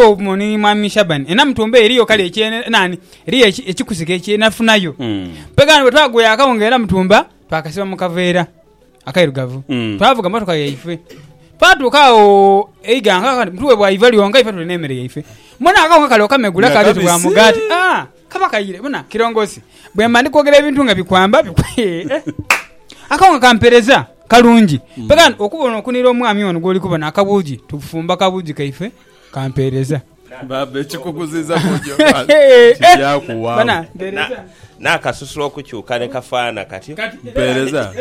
Obumo ni Mwami Shaban ena mutumba eyo eriyo kale ekye nani eriyo ekikusike ekye nafunayo mpega wano bwetwaguya akawo nga era mutumba twakasiba mu kaveera akairugavu twavuga motoka yaife twatuuka awo eiga nga kati mutuwe bwa iva lyonka ife tuli n'emere yaife mbona akawo nga kale okamegula Nga kabitibwa kabisi. mugaati Ah, kaba kaire bona kirongosi bwemba ndi kwogera ebintu nga bikwamba bikwe- akawo nga kampereza kalungi mpega wano okubona okunira omwami ono gwoli kubona akabuugi tufumba akabuugi kaife kampeereza. Baaba ekikuguziiza ku nju embaale kija kuwaamu. N'akasusu okukyuka ni kafaanha katyo. Mpeereza.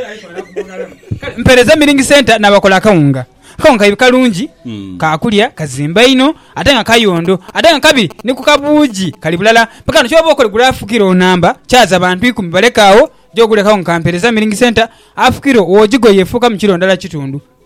Kale mpeereza Milling Centre n'abakola akawunga. Akawunga kaidhi kalungi, ka kulya, kazimba inho ate nga kayondo. Ate nga kabi ni ku kabuugi kali bulala. Mpaka ghano ky'oba okole gula afukire onamba, kyaza bantu ikumi baleke agho, ja ogule akawunga ka Mpeereza Milling Centre. Afukire owo jigo yeefuukamu kilo ndala kitundu.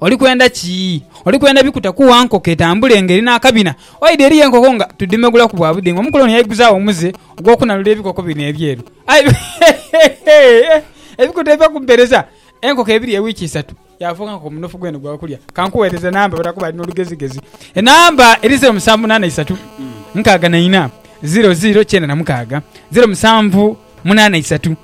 Oli kwenda ki? Oli kwenda bikutakuwa nkoko etambule ng'eri n'akabina? Oidha eriyo enkoko nga tudhimegulaku bwa budingo. Omukoloni yaiguzaagho omuze ogw'okunalula ebikoko bino ebyeru. Aye ebikuta ebiva ku mpereza enkoko ebirya ewiiki isatu, yaafuuka nkoko munofu gwene gwa kulya. Ka nkugheereze enamba bwetakuba ali n'olugezigezi. Enamba eri zeero musanvu munaana isatu, nkaaga na ina, zeero zeero kyenda na mukaaga, zeero musanvu munaana isatu.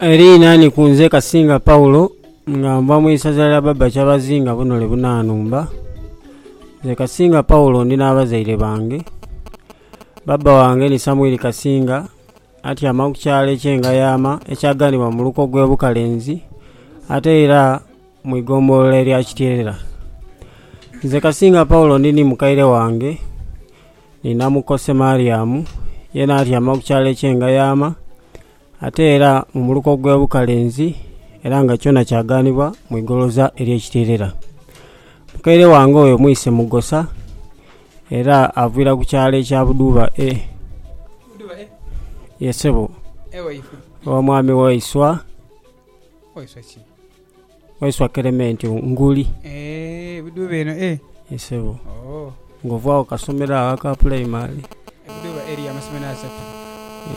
Eriinani ku nze Kasinga Paul nga nva mu isaza lya Baba Kyabazinga Bunole Bunanumba. Nze Kasinga Paul ndi n'abazaire bange. Baba wange ni Samwiri Kasinga atyama ku kyalo eky'e Ngayama ekyaganibwa mu muluka ogw'e Bukalenzi ate era mu ighombolola erya Kityeerera. Nze Kasinga Paulo ndi ni mukaire wange ni namukosi Mariamu, yena atyama ku kyalo eky'e Ngayaama ate era mu muluka ogw'e Bukalenzi era nga kyona kyaganibwa mu igoloza ery'e Kityeerera. Mukaire wange oyo mwise Mugosa era avira ku kyalo ekya Budhuba A. Budhuba A? Ye sebo. Ewaifwe. Ewa mwami waiswa. Waiswa ki? Waiswa Kelementi nguli. Eeh ebidhuba eno eeh. Ye sebo. Ooh. Nga ovagho ku kasomero agho aka puleimale. Ebidhuba eriyo amasomero asatu.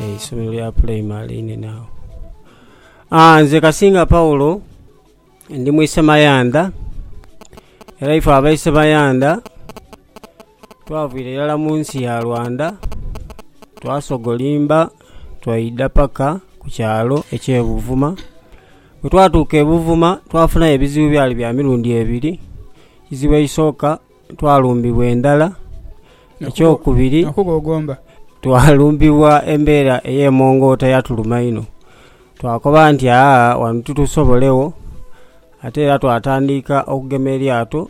Eeh eisomero lya puleimale einene agho. Aah nze Kasinga Paulo ndi mwisemayandha era ife abeisemayandha. Twavira irala mu nsi ya Rwanda, twasogolimba twaidha paka ku kyalo eky'e Buvuma. Bwetwatuuka e Buvuma twafunayo ebizibu ebyali bya mirundi ebiri. Eizibu eisooka twalumbibwa endhala, ekyokubiri twalumbibwa embeera ey'emongoota yatuluma inho. Twakoba nti aa wano titusobolegho ate era twatandika okugema eryato.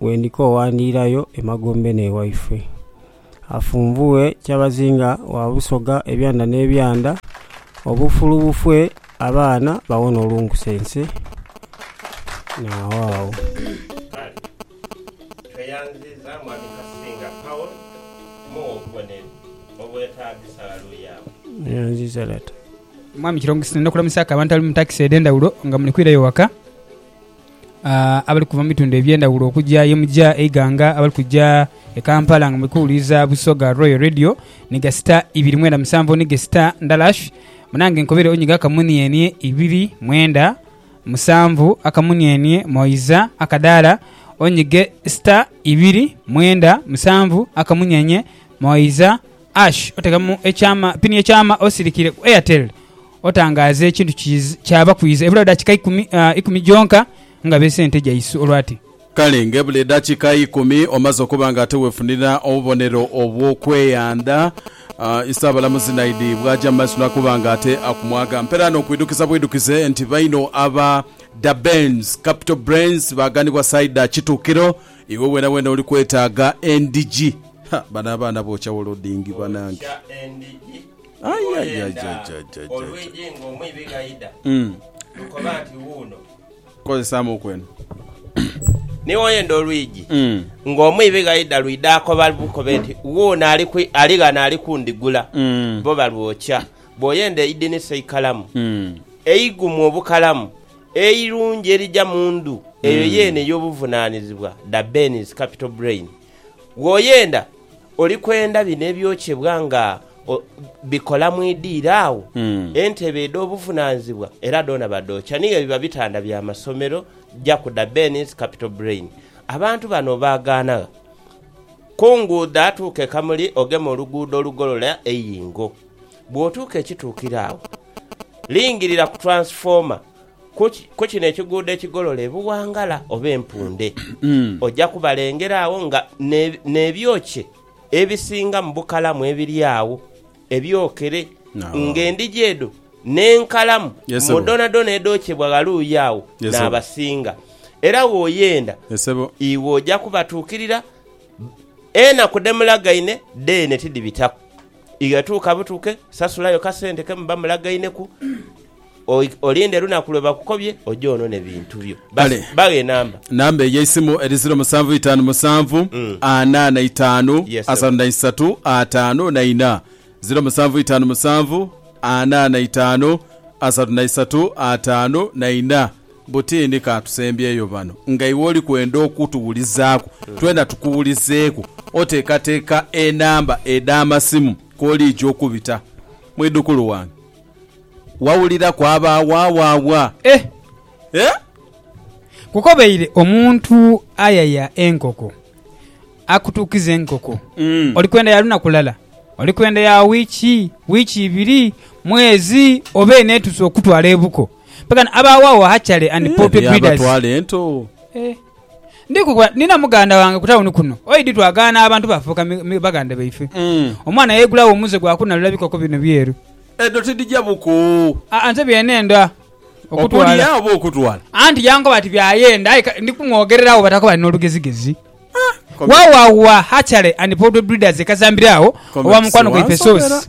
Bwe ndikoowa ndiirayo emagombe n'ewaifwe, afunvughe kyabazinga wa Busoga ebyanda n'ebyanda, obufulu bufwe abaana bawone olunkusense. Naagho agho. Kale tweyanziza Mwami Kasinga Paul mughe obubonero obwetaagisa. Laluyaawo. Neyanziza Lata. Mwami Kirongosi, ndina kulamusaku abantu abali mu takisi edhendhawulo nga muli kwirayo waka. abali kuva mu bitundu eby'endhaghulo okugya ye mugya eighanga, abali kugya e Kampala nga muli kuwuliriza Busoga Royal Radio ni gasita ibiri mwenda musanvu ni gasita ndhala shi. Munange nkobere onyiga akamunienie ibiri mwenda musanvu, akamunienie moiza akadaala onyige sita ibiri mwenda musanvu, akamunyenye moiza hash otekamu ekyama, pini y'ekyama osirikire ku Airtel. Otangaaze ekintu ki kyaba kwidha ebula dakika ikumi, ikumi gyonka nga beese ente gyaisu olwati. Kale ng'ebula edakika ikumi omaze okuba nga ate weefunira obubonero obw'okweyandha, Isaabalamuzi Naidhi bw'aja mu maiso n'akoba nga ate akumwaga mpera n'okwidukiza bwidukize nti baino aba Da Benz Capital Brains baaganibwa Saida Kituukiro, iwe weenaweena oli kwetaaga endhigi. Ha, bano abaana bookya wolodingi banange! Owoyenda olwigi ng'omwibi gh'aidha, lukoba nti, Wuuno. Kozesaamu oku eno. Ni woyenda olwigi ng'omwibi gh'aidha, lwidha akoba lukobe nti, Wuuno ali ghano ali kundigula. Bo balwokya. Bw'oyenda eidinisa eikalamu, eigumu obukalamu, eirungi erija mu ndhu, eyo yeene y'obuvunaanizibwa dha Benz Capital Brain. Bw'oyenda, oli kwenda bino ebyokyebwa nga bikola mu idiiro agho, entebe edh'obuvunaanizibwa era dhoona badhookya. Ni byo biba bitanda bya masomero, ja kuda Benny's Capital Brain. Abantu bano obaagaana gha? Ku nguudo atuuka e Kamuli ogema oluguudo olugolola e Yingo. Bw'otuuka ekituukiro agho, lingirira ku twansifoma. Ku kino ekiguudo ekigolole buwangala oba empunde, oja kubalengera agho nga n'ebyokye ebisingamu bukalamu ebiri agho ebyokere, ng'endhigi edho n'enkalamu mu dhoonadhoona edhokyebwa ghaluuyi agho n'abasinga. Era bw'oyenda, iwe oja kubatuukirira. Enaku dhe mulagaine dheene tidhibitaku. Iwe tuuka butuke, sasulayo kasente ke muba mulagaineku, Olinde lunaku lwe bakukobye oje onone bintu byo. Kale. Baghe enamba. Namba ey'eisimu eri ziro musanvu itaanu musanvu, ana na itaanu, Yes, sebo. asatu na isatu, ataanu na ina. Ziro musanvu itaanu musanvu, ana na itaanu, asatu na isatu, ataanu na ina. Butindi ka tusembyeyo ghano. Nga iwe oli kwenda okutuwulizaaku, twena tukuwulizeeku, oteekateeka enamba edh'amasimu kw'oliija okubita? Mwidhukulu wange. Wawulira kwaba waawaawa. Eh! Eh! Nkukobeire omuntu ayaya enkoko akutuukize enkoko. Oli kwenda ya lunaku lala, oli kwenda ya wiiki, wiiki ibiri, mwezi, oba eno etuuse okukutwala ebuko. Mpekano abaawaawa hatchali and poultry breeders. Eyabatwala ento. Eh! Ndi ku bwa, nina muganda wange ku tawuni kuno, oidi twagaana abantu baafuuka mi, mi, baganda baife. Omwana yaigulagho omuze gwa kunalula bikoko bino byeru. Edho tidhija buku. Aa, nze bye neenda okutwala. Okulya oba okutwala? Anti yankoba ati by'ayenda, aye ka, ndi kumwogereragho batako bali n'olugezigezi. Wawawa, hatchery and poultry breeders e Kazambire agho, owa mukwano gwaife Source.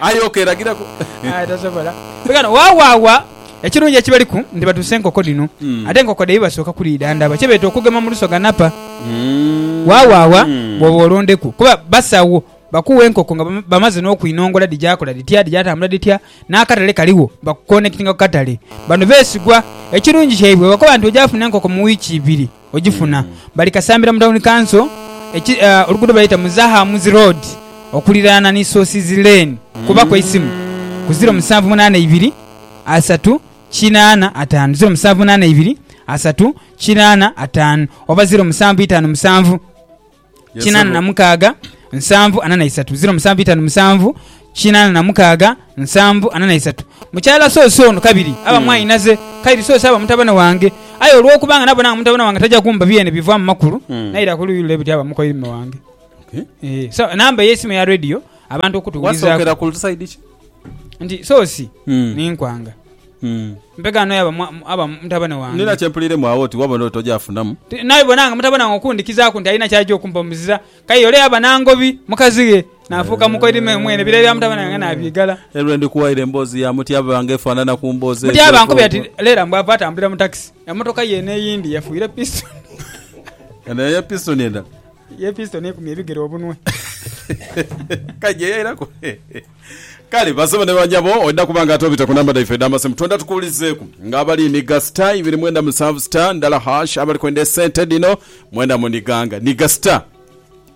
Aye ok lagiraku. Aye tosobola. Bigano wawawa ekirungi ekibaliku nti batuusa enkoko dhino ate enkoko dhaibwe basooka kulidha ndaba kye beeta okugema mu lusoga napa wawawa bwoba olondeku kuba basawo bakuwa enkoko nga bamaze nokwinongola dhijakola dhitya dhijatambula dhitya nakatale kaligho bakukonekitinga kukatale bano besigwa ekirungi kyaibwe bwebakoba nti ojafuna enkoko mu wiiki ibiri Ogifuna. Bali Kasambira mu Tawuni Kanso, oluguudo baluyita Muzahamuzi Road okuliraana ni Sources Lane. Kuba ku eisimu ku ziro musanvu munaana ibiri asatu kinaana ataanu ziro musanvu munaana ibiri asatu kinaana ataanu oba ziro musanvu itaanu musanvu. kinana na mukaaga nsanvu ana na isatu ziro musanvu itanu musanvu kinana na mukaaga nsanvu ana na isatu mukyala sosi ono kabiri aba mm. mwainaze kairi sosi aba mutabane wange aye olwokuba nga nabona nga mutabane wange taja kumba byene biva mu makulu mm. naira ku luyi lule biti aba mukoirime wange okay. eh, so namba eyesimu ya radio abantu okutuwulizako nti sosi mm. ninkwanga Mpegaano yabo aba mutabane wange. Ndina kye mpuliiremu agho oti wabona oti ojaafunamu. Naibona nga mutabane wange okundhikizaaku nti alina ky'aja okumpa omuzira, k'aye ole yaba nangobi mukazi ghe, naafuuka mukoidhime mwene, ebiragiro bya mutabane wange naabyigala. Era lwe ndikuwaire emboozi ya Mutyaba nga efaanana ku mboozi edho. Mutyaba ankubira ati, Leela mbu ava atambulira mu takisi. Emmotoka ye eno eyindi yefuire pisitoni. Eno ye pisitoni endala. Ye pisitoni ekumye ebigere obunwe. K'aije yairaku. Kale basebo ne banyabo oidha kuba nga ate obita ku namba dhaife edh'amasimu twendha tukuwulizeeku nga abali nhiga star ibiri mwenda musanvu star ndala hash abali kwenda esente dhino mwendha muniganga nhiga star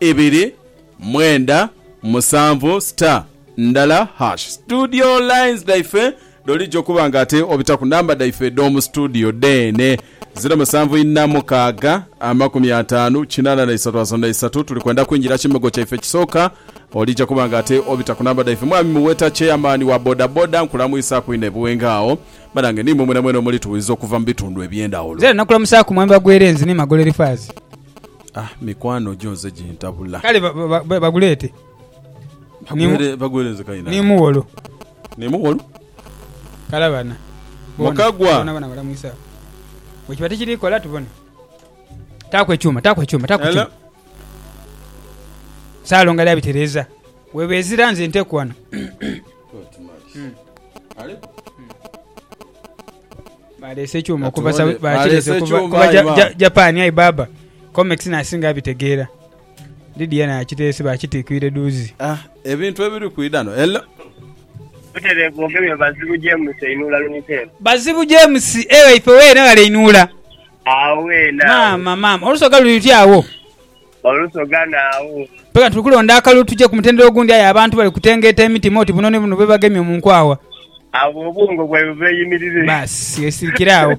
ibiri mwenda musanvu star ndala hash studio lines dhaife Dholidhi okuba nga ate obita ku namba dhaife edh'omu situdiyo dheene, ziro musanvu inha mukaaga, amakumi ataanu, kinaana na isatu asatu na isatu. Tuli kwenda kwingira kimogo kyaife ekisooka. Olija kuba nga ate obita ku namba dhaife. Mwami Muweta, Cheyamaani wa bodaboda, nkulamwisaaku inho e Buwenge agho. Banange ni imwe mwenamwena omulituwuliza okuva mu bitundu eby'endhawulo. Nze nakulamusaaku Mwami Bagwerenzi ni Magolo Elifaazi. Ah, mikwano gyo nze gintabula. Kale ba, ba, ba, baguleete. Ni mu- Bagwere, Bagwerenzi kayi ni nange. Muwolo. Ni mugholu. Kale abana bona Mukagwa. bona bona balamwisa bwe kiba tikiri kola tubone. Taaku ekyuma, taaku ekyuma, taaku Hello. ekyuma. Salongo ali abitereeza. Weeba ezira nze nteku wano. Baleese ekyuma okuva Katuwone. Saudi- bakirese Baleese okuva ekyuma, kuva aye Ja- baba. Ja- Japan aye baaba. Comex n'asinga abitegeera. Lidia naye akiteese baakitiikiire dhuuzi. Ah, ebintu ebiri kwidha no, hello. Butere bwogemye Bazibu James einhula lunhite eno. Bazibu James, Eeh waife weena ghale einhula. Agho weena agho. Maama, maama, olusoga luli luti agho? Olusoga naagho. Mpeka tuli kulonda akalulu tuje ku mutendera ogundi aye abantu bali kutengeeta emitima oti buno ni buno bwebagemye mu nkwagha. Agho obwongo bwaibwe bweyimirire. Baasi, yesirikire agho.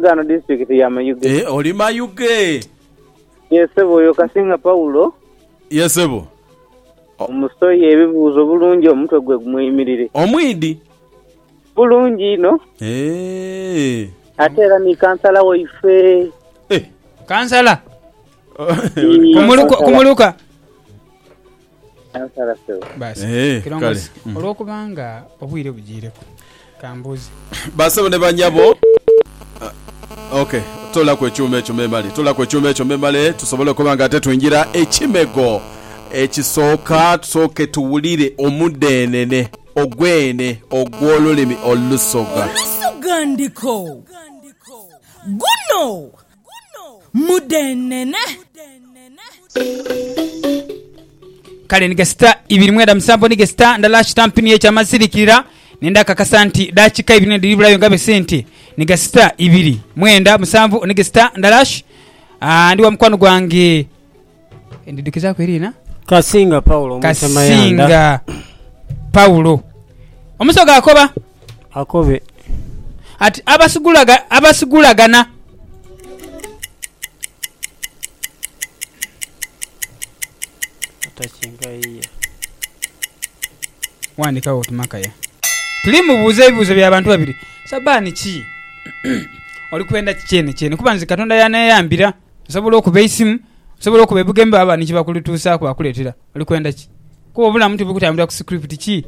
Ghano district ya Mayuge. Eh, oli Mayuge? Yes sebo oyo Kasinga Paulo. Yes sebo. Omusoye ebibuuzo bulungi omutwe gwe gumweyimirire. Omwidi? Bulungi inho. Eh. Ate era ni kansala waife. Eh. Kansala? Kumuluka, kumuluka. Nansala ssebo. Baasa. Eeh, Kirongozi, kale. Mm. olwokuba nga obwire bujiireku, ka mbuuze. Baasebo ne bannyabo, ah, ok, toolaku ekyuma ekyo memale, toolaku ekyuma ekyo memale tusobole okuba nga ate twingira ekimego ekisooka, tusooke tuwulire omudeenene ogw'ene ogw'olulimi olusoga. Olusoga ndiko. Guno. mudheenhenhe. Kale ni gasita ibiri mwenda musanvu ni gasita ndala kitampi niyo ekyama nsirikirira ni ndhakakasa nti daakika ibiri ni dhiri bulayo nga bwe si nti ni gasita ibiri mwenda musanvu ni gasita ndala. Aa, ndi wa mukwano gwange. Ndidhukizaaku eriina? Kasinga Paulo Omutemayandha. Kasinga Paulo. Omusoga akoba. Akobe. Ati abasigulaga, abasigulagana. Atakinga yiye. Wandikawo oti Makaya. Tuli mu buuza ebibuuzo bya bantu babiri. Sabani ki? Oli kwenda ki kyene kyene? Kuba nze Katonda y'aneyambira. Nsobola okuba eisimu, nsobola okuba ebigambo bye baba ni kye bakutuusaaku bakuleetera. Oli kwenda ki? Kuba obulamu tibuli kutambulira ku sikiriputi ki?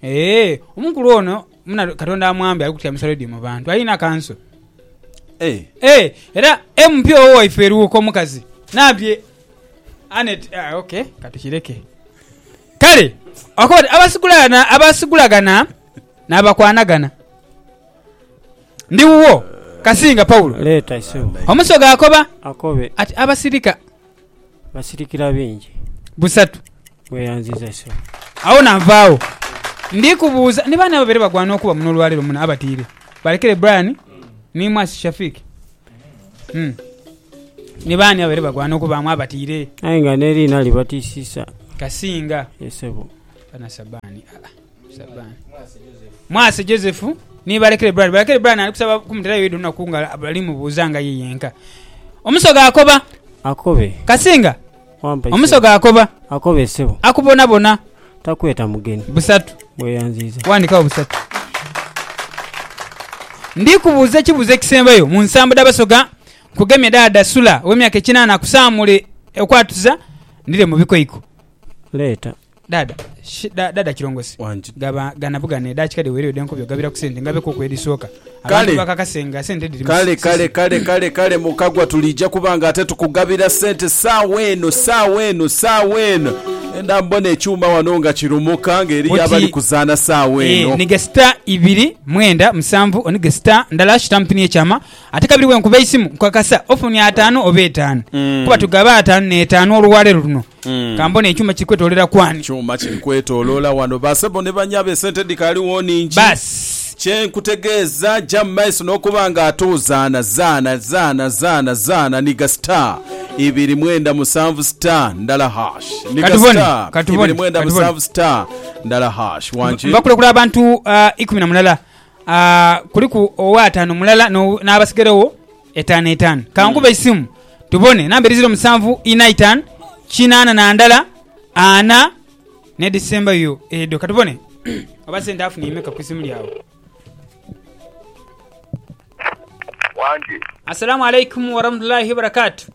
Ee, omukulu ono muna Katonda amwambe ali kutyamisa leediyo mu bantu. Alina kanso. Ee, era MP owo waife e Luuka omukazi nabbi Annet. Ah, ok, ka tukireke. Kale, akoba ati, Abasigulagana, abasigulagana n'abakwanagana. Ndi wuwo, Kasinga Paulo. Omusoga akoba ati, Abasirika busatu. Agho nanvaagho. Ndi kubuuza ni baani ababaire bagwana okuba muno olwaleero muno abatiire? Balekere Brian ni Mwasi Shafiq. Ni baani ababaire bagwana okubaamu abatiire? Kasinga. Mwase Joseph ni Balekere Brian. Balekere Brian ali kusaba kumuterayo yidhi olunaku nga ali mubuuza nga ye yenka. Omusoga akoba. Akobe. Kasinga. Wampa isebo. Omusoga akoba. Akobe sebo. Akubonabona. Takweta mugeni. Busatu. Weyanziiza. Wandikawo busatu. Ndi kubuuza ekibuuzo ekisembayo mu nsambo dha Basoga. Nkugemye daada Sula ow'emyaka ekinaana akusaamule okwatuza ndire mu bikoiko. Leeta. Dada, shi, da, dada Kirongosi, Wangi. gaba gana bugana edakika dhe wereyo dhe nkobye ogabiraku sente ngabe kuku edhisoka. Abantu Kale. bakakase nga sente dhiri mu Kale sisi. kale kale kale kale Mukagwa tuliija kuba nga ate tukugabira sente saawa eno saawa eno saawa eno. Enda mbona ekyuma wano nga kirumuka nga eriyo Oti- abali kuzaana saawa Eh, eno. nige star ibiri mwenda musanvu onige star ndala shitampini ekyama ate kabiri wenkuba eisimu nkukakasa ofuni ataanu oba etaanu Mm. kuba tugaba ataanu n'etaanu olwaleero luno Ka mbone ekyuma kiri kwetoloolera ku ani? Kyuma kiri kwetoloola wano. Basebo ni banyabo esente dhikaaliwo nhingi. Baasi. Kye nkutegeeza ja mu maiso n'okuba nga ate ozaana, zaana, zaana, zaana, zaana, nhiga star ibiri mwenda musanvu star ndala hash. Nhiga Katubone, star ibiri katubone, mwenda katubone. musanvu star ndala hash. Wangi. Mbakulekula abantu ah, ikumi na mulala. Ah, kuliku ow'ataano mulala n'o- n'abasigarewo Etaanu etaanu. Ka nkube eisimu tubone. Namba edhizira omusanvu inha itaanu kinaana na ndala ana n'edhisembayo edho. Ka tubone oba sente afunye imeka ku isimu lyabwe. Wangi. Assalaamu alaikum warahmatullahi wabarakatuh.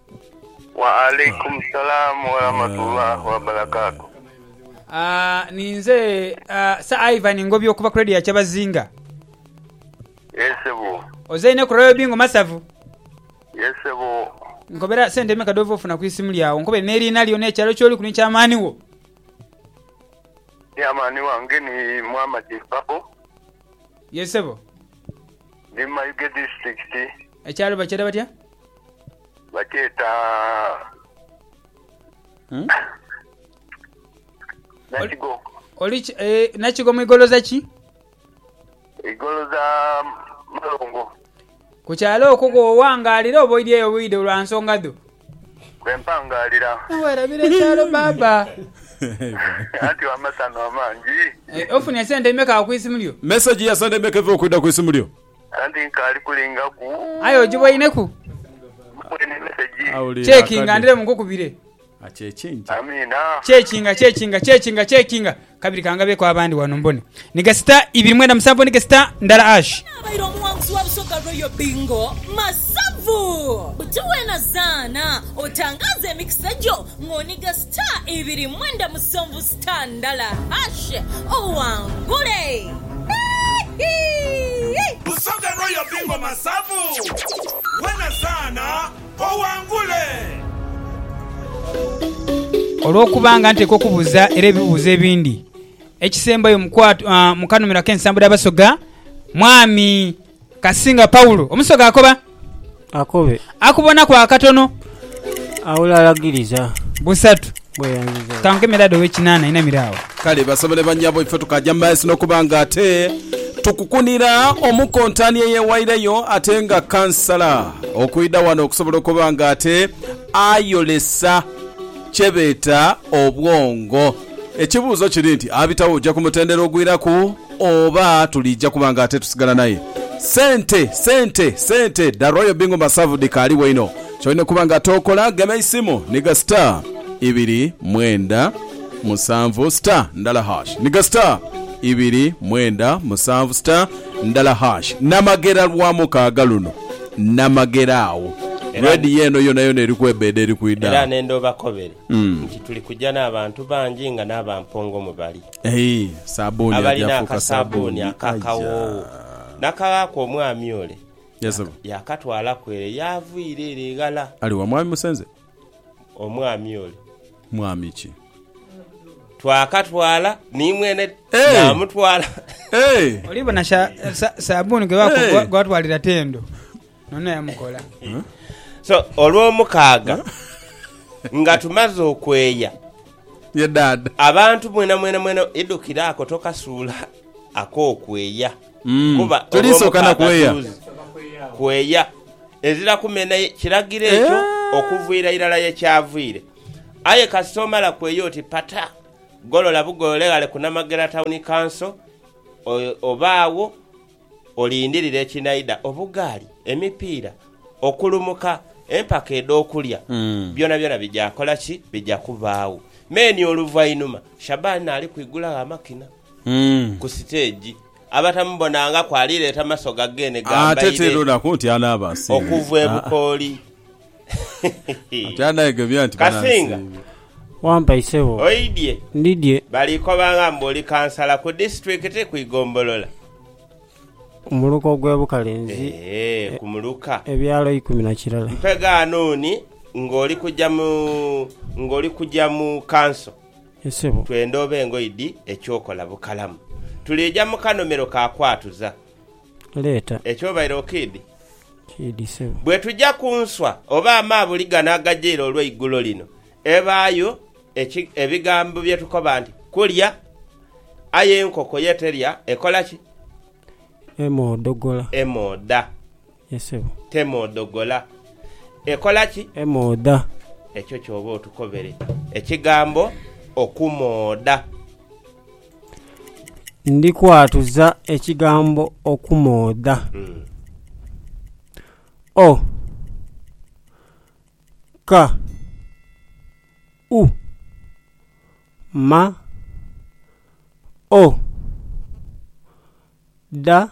Wa alaikum salaam warahmatullahi wabarakatuh. Ah, ninze ah, Sir Ivan Ngobya okuva ku Radio ya Kyabazinga. Yes sebo. Ozaine ku Royal Bingo masavu? Yes sebo. Nkobera sente meka dhova ofuna ku isimu lya wo nkobere n'eriina lyo n'ekyalo kyoliku ni chairman wo. Chairman wange ni Muhammad Mpapo. Yes sebo. Ndi mu Mayuge district. Ekyalo bakyeta batya? Bakyeta Nakigo. Oli ki, eh, Nakigo mu igoloza ki? Igolo dha malongo. Ku kyalo okwo kw'owangaalira oba oidhieyo bwidho lwa nsonga dho? Kwe mpangaalira. Weerabira ekyalo baaba. Anti w'amasanhu amangi. Ofunye sente imeka ku isimu lyo? Mesegi ya sente imeka eva okwidha ku isimu lyo? Anti nkaali kulingaku. Aye ogiboineku? Mboine mesegi. Chekinga ndire mu nkukubire. Amiina. Chekinga chekinga chekinga chekinga kabiri kangabeku abandi wano mbone ni gasita ibiri mwenda musanvu ni gasita ndala hash. Ani abaire omuwanguzi wa Busoga Royal Bingo Masavu? Buti wena zaana otangaaze emikisa gyo ng'oniga sita ibiri mwenda musonvu sita ndala hash owangule. Busoga Royal Bingo Masavu! Wena zaana! owangule. Olw'okuba nga nteekwa okubuuza era ebibuuzo ebindi, ekisembayo mu kanhumiro ak'ensambo dha Basoga, Mwami Kasinga Paulo, Omusoga akoba? Akobe. Akubonaku akatono? Aula alagiriza. Busatu. Kanke Medard ow'ekinaana ainamire agho. Kale basobole bannyabo, ife tukaaja mu maiso n'okuba nga ate tukukunira omukontani eyeewaireyo ate nga kkansala okwidha wano okusobola okuba nga ate ayolesa kye beeta obwongo. Ekibuuzo kiri nti abitawo oja ku mutendera ogwiraku oba tuliija kuba nga ate tusigala naye? Ssente, ssente, ssente! The Royal Bingu Masavu dhikaaliwo inho. Ky'olina okuba nga tookola, gema eisimu nhiga star ibiri mwenda musanvu star ndala hash nhiga star ibiri mwenda musanvu star ndala hash Namagera lwa mukaaga luno Namagera agho Era ne- Radio eno yonayona eri kwebeeda eri kwidha Era agho. nenda obakobere nti tuli kuja n'abantu bangi nga n'aba Mpongo mwe bali, Ehi, sabuuni abalina ajafuuka akasaabbuuni sabuuni. aka kawoowo, n'akaghaaku omwami ole. Yes, sebo. Yaakatwalaku ere y'aviira ere eghala. Ali wa Mwami Musenze? Omwami ole. Mwami ki? Twakatwala ni mwene Hey! yaamutwala. Hey! Olibona sha- sa- sabuuni gwe baku- Hey! gwa- gwatwalira tendo nono yamukola So olw'omukaaga nga tumaze okweya Ye dad. abantu mwena mwena mwena idukire ako tokasuula ak'okweya. Mm. Kuba Tuliisooka na olw'omukaaga kweya. tuzi kweya, ezira kumena ye kiragiro ekyo Eh. okuviira irala ye kyavire. Aye kasita omala kweya oti pata, golola bugolole ghale ku Namagera Town Council o- obe agho olindirire ekinaidha, obugaali, emipiira, okulumuka, empaka edh'okulya, Mm. byonabyona bija kola ki? Bija kubaagho. Me ni oluvainhuma Shaban ali kwigulagho amakina. ku siteegi, abatamubonangaku alireeta maso ga geene gambaire okuva e Bukooli. Kasinga, oidye? Baliikobanga mbu oli kansala ku disiturikiti, ku igombolola? Ee, ku muluka. Mpe ghanuuni ng'oli kuja mu kanso. Ye sebo. Twenda obe ngoye dhi eky'okola bukalamu. Tuliija mu kanomero ka kwatuza. Leeta. Eky'obaire okiidhi? Kiidhi sebo. Bwetuja ku nswa oba amaabuli gano agajaire olweigulo lino, ebaayo eki, ebigambo bye tukoba nti, Kulya. Aye enkoko ye terya, ekola ki? Emoodhogola. Emoodha. Ye sebo. Temoodhogola. Ekola ki? Emoodha. Ekyo ky'oba otukobere ekigambo okumoodha. Ndi kwatuza ekigambo okumoodha. O ka u ma o dha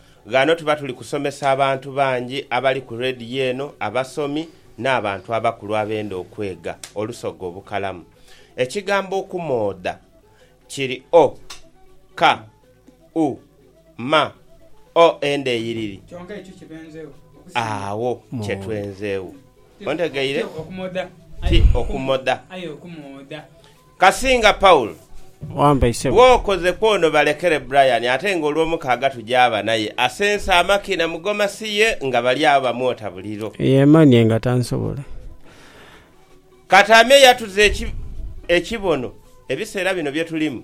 Ghano tuba tuli kusomesa abantu bangi abali ku rediyo eno, abasomi, n'abantu abakulu abenda okwega olusoga obukalamu. Ekigambo okumoodha kiri o, ka, u, ma, o enda eyiriri. Agho kye twenzeegho. Ontegeire? Ti okumodha. Kasinga Paul, Wampai sebo. Bwokoze kwono balekere Brian ate nga olwomukaaga tuja aba naye asense amaki na mugoma siye nga bali agho bamwota buliro. Yemanie nga tansobole. Kati ame yatuza eki ekibono ebisera bino byetulimu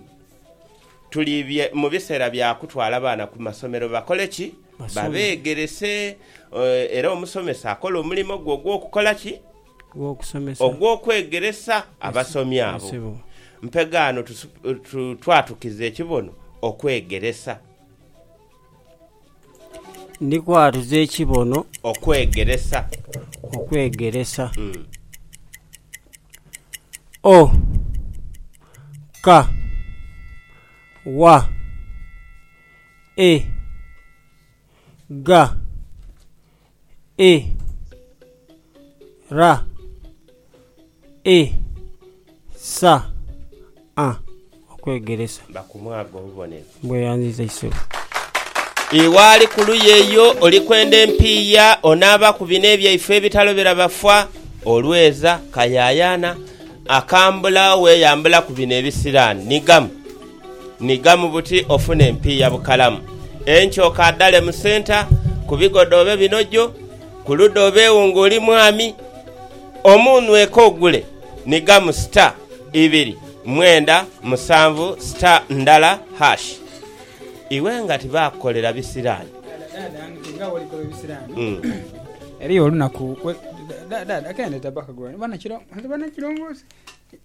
tuli bye mubisera bya kutwala baana ku masomero bakole ki? Basome. Babegerese era omusomesa akola omulimo gwe ogwokukola ki? ogw'okwegeresa abasomi abo. Mpegaano twatukiza ekibono okwegeresa. Ndi kwatuza ekibono okwegeresa. Okwegeresa. O ka wa e ga. e ra e sa a okwegeresa. Ba ku mwaga obubonero. Mbweyanziza isebo. Iwe ali ku luyi eyo oli kwenda empiiya, onaaba ku bino ebyaife ebitalobera bafa, olweza, kayayana, akambula, weyambula ku bino ebisiraani. Nigamu. Nhigamu buti ofune empiiya bukalamu. Enkya okaadhale mu senta ku bigoda obe binojo, ku luda obeegho ng'oli mwami. Omuunhweko ogule, nhigamu star, ibiri, mwenda, musanvu, star, ndala, hash. Iwe nga tibaakukolera bisiraani. Dhaadha, dhaadha, nti nga bw'olikoba ebisiraani, eriyo olunaku lwe, dhaadha, dhaadha, k'endhe tabba kagulaniro, banakiro, nze banakirongoosi.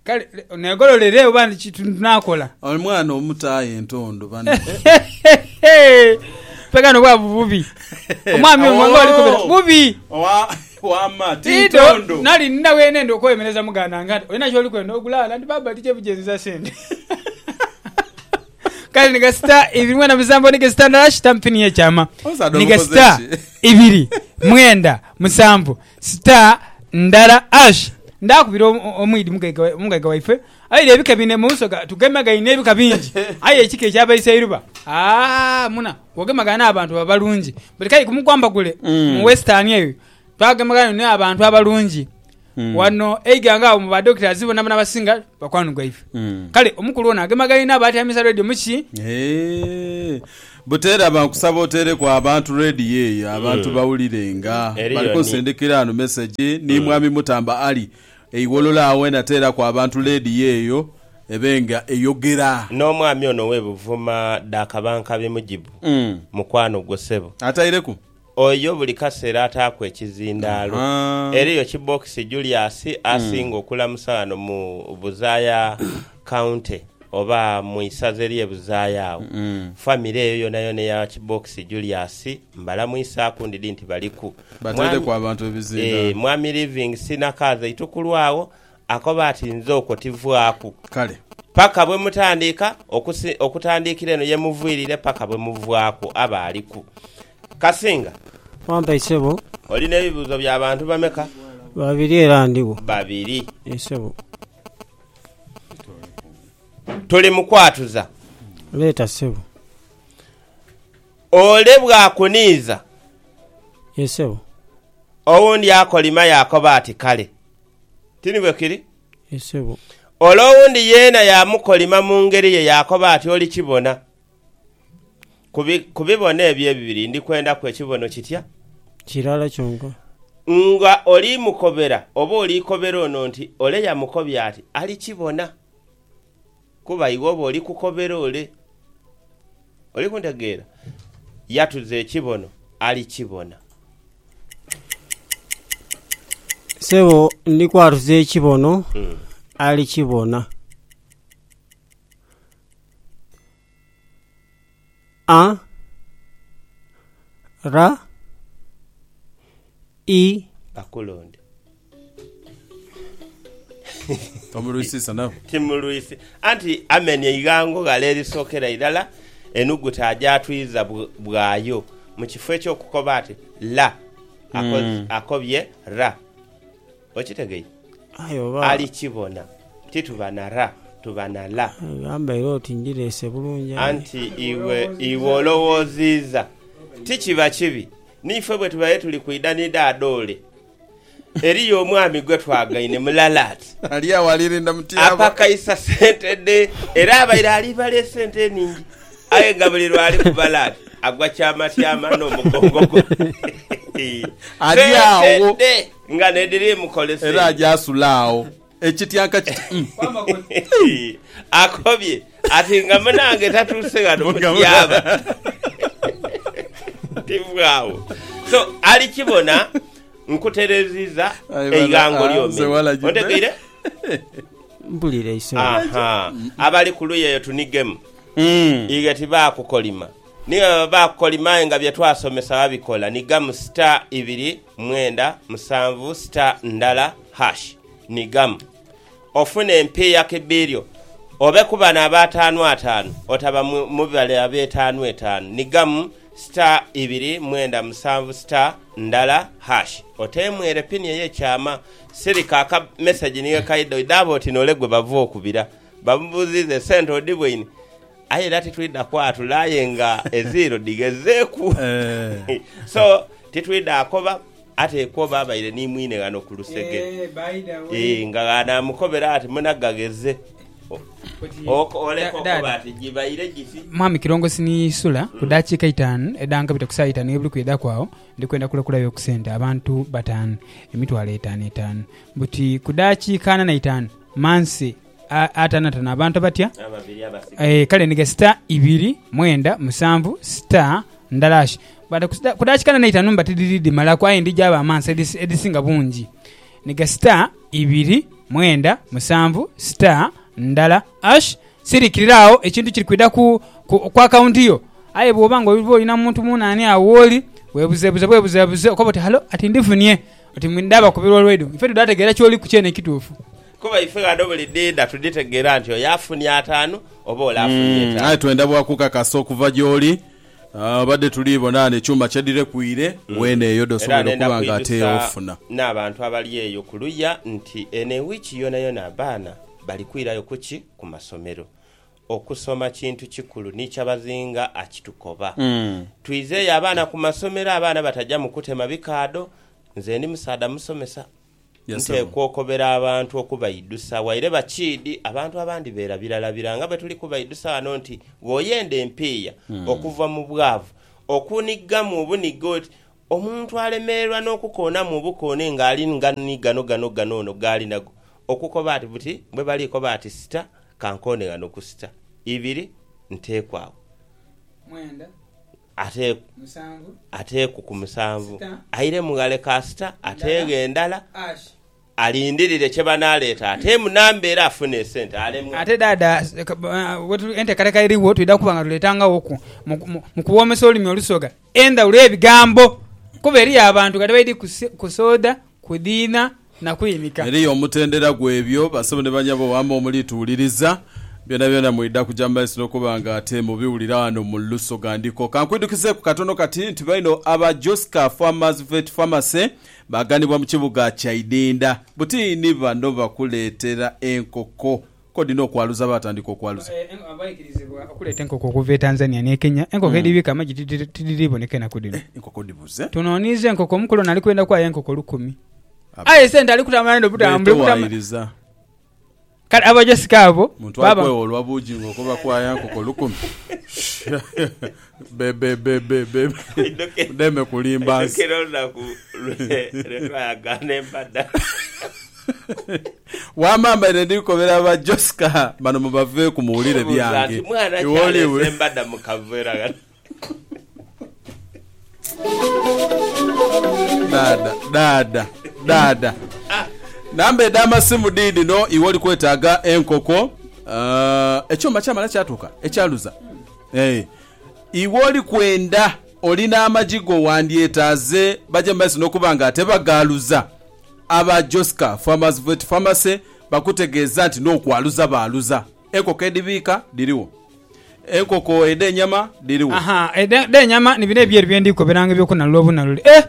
Kale negololere oba ni kintu naakola. Omwana omuto aye entondo bana. Mpegha no bwavu bubi. Omwami ono nga olikobera bubi. Wama ti Tidho ntondo. nali nina wenenda okwemereza muganda nga nti olina kyoli kwenda ogulaala nti baba tija bijenza sente. Kale ni gasita ibiri mwenda musanvu ni gasita ndala shita mpini ye kyama. Omusaadha ni omukoze gasita ki? ibiri mwenda musanvu. Sita ndala Asha ndhaakubira omwidhi omugaiga waife, aire ebika bine mu nsoga. Tugemagaine ebika bingi, aye ekika ekya Baiseiruba, aa muna, bw'ogemagaine abantu baba balungi. Buli kayi ku mukwambagule mu Western eyo twagemagaine ni abantu abalungi. Wano e Iganga agho mu ba doctors bonabona abasinga bakwano gwaife. Kale omukulu ono agemagaine abatyamisa radio mu ki? Eeh. Buteera ba nkusaba oteereku abantu radio eyo abantu bawulirenga. Bali kunsindikira ghano message ni Mwami Mutamba Ali e Iwololo agho wena teeraku abantu radio eyo ebe nga eyogera. N'omwami ono owe Buvuma dha Kabankabi Mujibu mukwano gwo sebo. Ataireku. Oyo buli kasera ataaku ekizindaalo. Eriyo Kibokisi Julius asinga okulamusa ghano mu Buzaaya County oba mu isaza erye Buzaaya agho. Famire eyo yonayona eya Kibokisi Julius mbalamuisaaku ndidhi nti baliku. Mwami, Bateereku abantu ebizindaalo. Eeh, Mwami Livingstine Akaaza itukulwagho Akoba ati, Nze okwo tivaaku. Kale. Paka bwe mutandiika okusi, okutandiikira eno ye muviirire paka bwe muvaaku. Aba aliku. Kasinga. Wampa yi, ssebo? Oli n'ebibuuzo bya bantu bameka? Babiri era ndigho. Babiri. Yee, ssebo. Tuli mu kwatuza. Leeta, ssebo. Ole bw'akuniiza. Yee, ssebo. Owundi akolima yaakoba ati, Kale. Ti ni bwe kiri? Yee, ssebo. Ole owundi yeena yaamukolima mu ngeri ye yaakoba ati, Olikibona. Ku bi, ku bibono ebyo ebibiri ndi kwendaku ekibono kitya? Kirala kyonka. Nga oli mukobera, oba oli kobera ono nti, Ole yamukobye ati, Alikibona. Kuba iwe oba oli kukobera ole. Oli kuntegeera? Yatuza ekibono, ali kibona. Sebo, ndi kwatuza ekibono, ali kibona. A ra i. Bakulonde. Tomulwisisa nabo. Timulwisi. Anti amenya eighango ghale erisookera irala, enuguta agyatwiza bu, bwayo, mu kifo eky'okukoba ati la, ako, akobye ra. Okitegeire? Aye oba. Ali kibona. Ti tuba na ra, tuba na la. Aye gamba era oti ndireese bulungi aye. Anti iwe, iwe olowooziiza. Ti kiba kibi. Niife bwe tubaire tuli kwidha ni dha dhoole, eriyo omwami gwe twagaine mulala ati. Ali agho alirinda mu tyaba. Apakaisa sente dhe. Era abaire alibala esente enhingi. Aye nga buli lw'ali kubala ati, agwa tyamatyama n'omugongo gwe. Ali agho. Sente dhe. Nga n'edhiri mu kolese. Era aja asula agho. Ekityanka kiti, Umm! Akobye ati, Nga munange tatuuse ghano mutyaba. Tive agho. So, ali kibona nkutereziza eighango ly'omenye. Ontegeire? Mpulira eisobi. Aha. Abali ku luyi eyo tunigemu. Ighe tibaakukolima. Ni baba baakolima aye nga bye twasomesa babikola, ni gamu star ibiri mwenda musanvu star ndala hash ni gamu ofune empiiya ki biilyo. Obe ku bano ab'ataanu ataanu otaba mu bale ab'etaanu etaanu ni gamu star ibiri mwenda musanvu star ndala hash oteemwere pini ey'ekyama. Sirika aka mesegi ni wekaidha oidhe abo oti n'ole gwe bava okubira. Bamubuuziiza, Esente odibweine? Aye era titwidha kwatula aye nga eziiro dhighezeeku. So, titwidha akoba, atekwa oba abaire ni mwine ghano ku lusegere. Eeh, nga bw'anaamukobera ati, Muna gagheze. O, o, oleka okoba ati, Gibaire giti. Mwami Kirongosi ni Isula, ku daakiika itaanu edha nkabita ku saa itaanu ey'ebuli kwidhaku agho, ndi kwenda kulekulayo ku sente abantu bataanu, emitwalo etaanu etaanu. Buti ku daakiika ana na itaanu, mmanse atanatana abantu abatya kale ni gesita ibiri mwenda musanvu sita ndalash kudakikana neitanu mba tidiri dimalaku aye ndi jaba amansa edisinga bungi ni gesita ibiri mwenda musanvu sita ndala ash sirikirira awo ekintu kiri kwida ku, ku, ku akawunti yo aye bwoba nga oba olina muntu munani awo woli webuzebuze bwebuzebuze okoba oti halo ati ndifunie oti ndaba kubirwa olwaido ife tudategera kyoliku kyene kitufu Kuba ife ghano buli dhiidha tudhitegeera nti oyo afunye ataanu oba ole afunye Mm, aye etaanu. twenda bwa kukakasa okuva gy'oli. Ah, Obadde tuli bona ghano ekyuma kye dhirekwire, weene eyo Era dh'osobola nenda okuba nga ate kwidhusa ofuna. n'abantu abali eyo ku luya nti eno ewiiki yoonayona abaana bali kwirayo ku ki? Ku masomero. Okusoma kintu kikulu ni kyabazinga akitukoba. Twizeeyo abaana ku masomero, abaana bataja mu kutema bikaadho. Nze ndi musaadha musomesa, Nteekwa okobera abantu okubaidhusa waire bakiidhi abantu abandi beera biralabira nga bwe tuli kubaidhusa ghano nti gh'oyenda empiiya okuva mu bwavu, okunighamu obunigha oti omuntu alemererwa n'okukoonamu obukoone ng'ali nga ni gano gano gano ono g'ali nago okukoba ati buti bwe bali koba ati sita ka nkoone ghano ku sita ibiri nteekwa agho. ateeku ku musanvu aire mu ghale kasita ateeghe endala alindirire kye banaaleeta ateemu namba era afune esente alemwe. Ate dhaadha enteekateeka erigho twidha kuba nga tuleetangaghoku mu kuwoomesa olulimi Olusoga endhawulo y'ebigambo kuba eriyo abantu kati baidhi ku soda Kudhiina na kwimika. Eriyo omutendera gw'ebyo, basebo ni banyabo, waama omuli tuwuliriza. Byonabyona mwidha kuja mu maiso n'okuba nga ate mubiwulira ghano mu Lusogandiko. Ka nkwidhukizeeku katono kati nti baino aba Joska Farmers Vet Pharmacy baaganibwa mu kibuga Kyaidinda. Buti ni bano bakuleetera enkoko. Kodi n'okwaluza baatandika okwaluza. Abaikirizibwa okuleeta enkoko okuva e Tanzania n'e Kenya, enkoko edhibiika amagi tidhiri boneka enaku dhino. Eh, enkoko dhibuze! Tunooniiza enkoko, omukulu ono ali kwenda kwaayo enkoko lukumi. Aye sente ali kutambula dhino butamu. Kale abajosika abo baaba. Muntu ali kwewolwa Bujingo okuva kwaayo enkoko lukumi. Bebebebebe. Oidhoke- Mudeme kulimba nsi. Aidhokera olunaku lwe lwe twayagaana empadha. Wama mbaire ndi kukobera ba Josca bano mubaveeku muwulire Buuza byange. nti, Mwana ki Iwe oli- aleese embada mu kaveera kano? Dada, dada, dada. Namba edh'amasimu diidhino iwe oli kwetaaga enkoko. Ah, ekyuma kyamala kyatuuka ekyaluza. Aye iwe oli kwenda, oli n'amagi go, wandyetaaze baje mu maiso n'okuba nga ate bagaaluza. Aba Josca Farmers Vet Pharmacy bakutegeeza nti n'okwaluza baaluza. Enkoko edhibiika dhirigho. Enkoko edh'enyama dhirigho. Aha, edh'enyama ni bino ebyeru bye ndi koberanga eby'okunalula obunalule. Eh!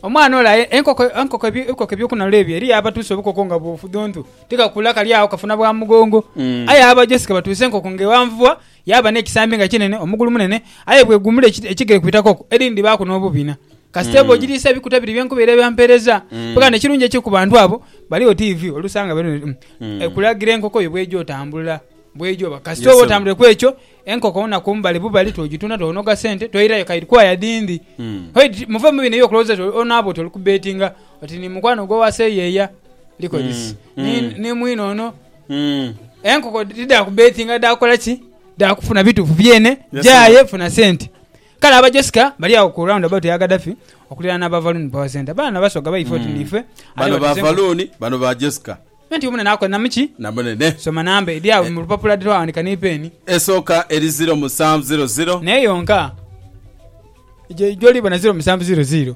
Omwana ole aye enkoko, enkoko, enkoko eby'okunalula ebyo eriyo abatuusa obukoko nga bufudhuntu, tikakula kali agho kafuna bwa mugongo. Aye aba Josca batuusa enkoko ng'eghanvubwa Yaaba n'ekisambi nga kinene, omugulu munene, aye bw'eguumula ekigere ku itaka okwo, edhini dhibaaku n'obubiina. Kasita eba ogiriisa ebikuta biri bye nkubaire bampeereza. Bwekanga n'ekirungi ekiri ku bantu abo, bali oti ivi, oluusi anga bali oti mm, ekulagira enkoko yo bw'eija otambula. Bw'eija oba. Kasita oba otambwire ku ekyo, enkoko wona ku mbali bubali tw'ogitunda twonoga sente, twoirayo ka edhikoaya dhindi. Hoi, muve mu bino eby'okulowooza nti oli onaaba oti oli kubbeetinga, oti ni mukwano gwo wa seyeeya, likolisi, ni, ni mwine ono, Enkoko tidha ku betinga dha kola ki dha kufuna bitufu byene jaye funa sente kale aba Jessica bali agho ku round about eya Gadafi okulirana na ba Valoon power center baana na basoga baife oti niife bano ba Valoon bano ba Jessica Nti omune nakola na muki? Na munene. Soma namba edhi agho mu lupapula dhe twaghandika ni peeni. Esooka eri ziro musanvu ziro ziro. Naye yonka gy'olibona ziro musanvu ziro ziro.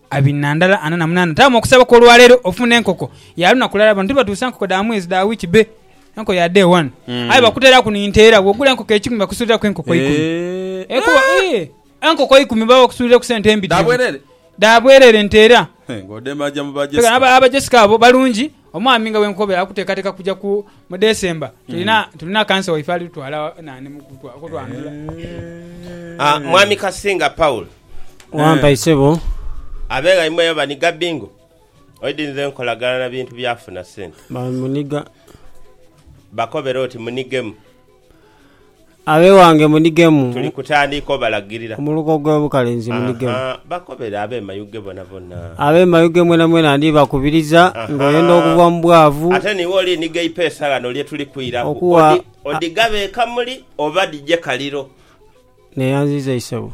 Abinandala ana na munana taamu okusaba kw'olwaleero ofuna enkoko ya lunaku lulala. Bano tibatuusa nkoko dha mwezi, dha wiiki bbe enkoko ya day one. Aye bakuteeraku ni nteera, bw'ogula enkoko eikumi bakusuuliraku enkoko eikumi. Ekuba ii, enkoko eikumi baba bakusuulira ku sente mbitirivu. Dha bwereere nteera. Nga odema aja mu ba Jessica. Aba Jessica abo balungi Omwami nga bwenkobe akutekateka kuja ku mu December tulina tulina kansa waife ali tutwala nani mu kutwa- kutwandula. Ah, Mwami Kasinga Paul, Wampa isebo. abegha imwe oba ni Gabingo oidinze enkolagana na bintu byafuna sente. Ba muniga. Bakobere oti munigemu. Ab'ewange munigemu. Tuli kutandiika obalagirira. Ku muluka ogw'obukalenzi munigemu. Aha, bakobere ab'emayughe bonabona. Ab'emayughe mwenamwena ndibakubiriza, nga oyenda okuva mu bwavu. Ate niiwe oliniga eipeesa ghano lye tuli kwiraku, odhighabe e kamuli oba dhije kaliro. Neeyanziiza isebo.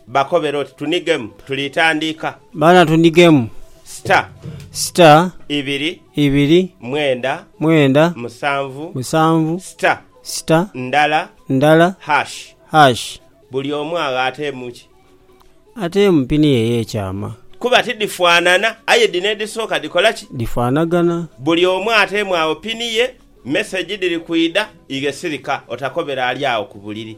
Bakobere oti, Tunigemu, tuli tandiika. Baana tunigemu. Sita. Sita. Ibiri. Ibiri. Mwenda. Mwenda. Musanvu. Musanvu. Sita. Sita. Ndala. Ndala. Hash. Hash. Buli omu agho ateemu ki? Ateemu pini ye ey'ekyama. Kuba tidhifaanana, aye dhino edhisooka dhikola ki? Dhifaanagana. Buli omu ateemu agho pini ye. Mesegi dhiri kwidha. Ighe sirika, otakobera ali agho ku buliri.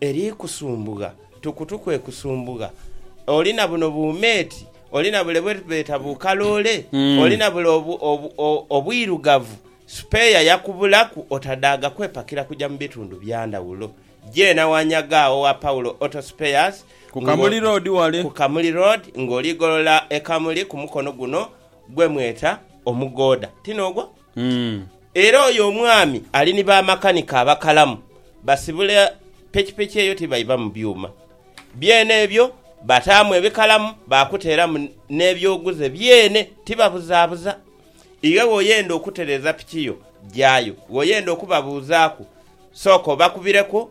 Eri kusumbugha, tukutu kwe kusumbugha. Oli na buno buumeeti, oli na bule bwe beeta bukaloole, oli na bule obwirugavu, supeeya yakubulaku otadhaaga kwepakira kuja mu bitundu bya ndhawulo. Jeena wanyaga agho wa Paulo Auto Spares, Ku Kamuli Road wale. ku Kamuli Road ng'oli golola e Kamuli ku mukono guno gwe mweta Omugooda. Ti n'ogwo? Era oyo omwami ali ni bamakanika abakalamu, basibula pikipiki eyo tibaiva mu byuma byene ebyo, bataamu ebikalamu baakuteeramu n'ebyoguze byene, tibabuzaabuza. Iwe bw'oyenda okutereeza piki yo, jaayo. Bw'oyenda okubabuuzaaku, sooka obakubireku.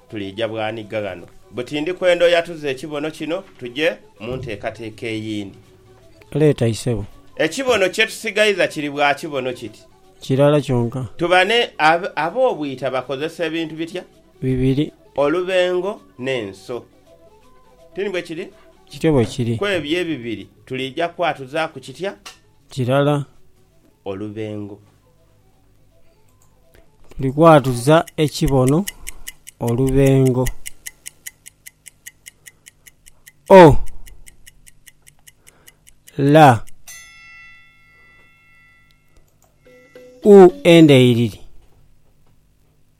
Tuliija bwanigga ghano buti ndi kwenda oyatuze ekibono kino tuje mu nteekateeka eyindi. Leeta isebo. Ekibono kye tusigaiza kiri bwa kibono kiti. Kirala kyonka. Tuba ne. Ab'obwita bakozesa ebintu bitya? Bibiri. Olubengo n'enso. Ti ni bwe kiri? Kityo bwe kiri. Ku ebyo ebibiri tuliija kwatuzaaku kitya? Kirala. Olubengo. Tuli kwatuza ekibono olubengo. O La U endheiriri.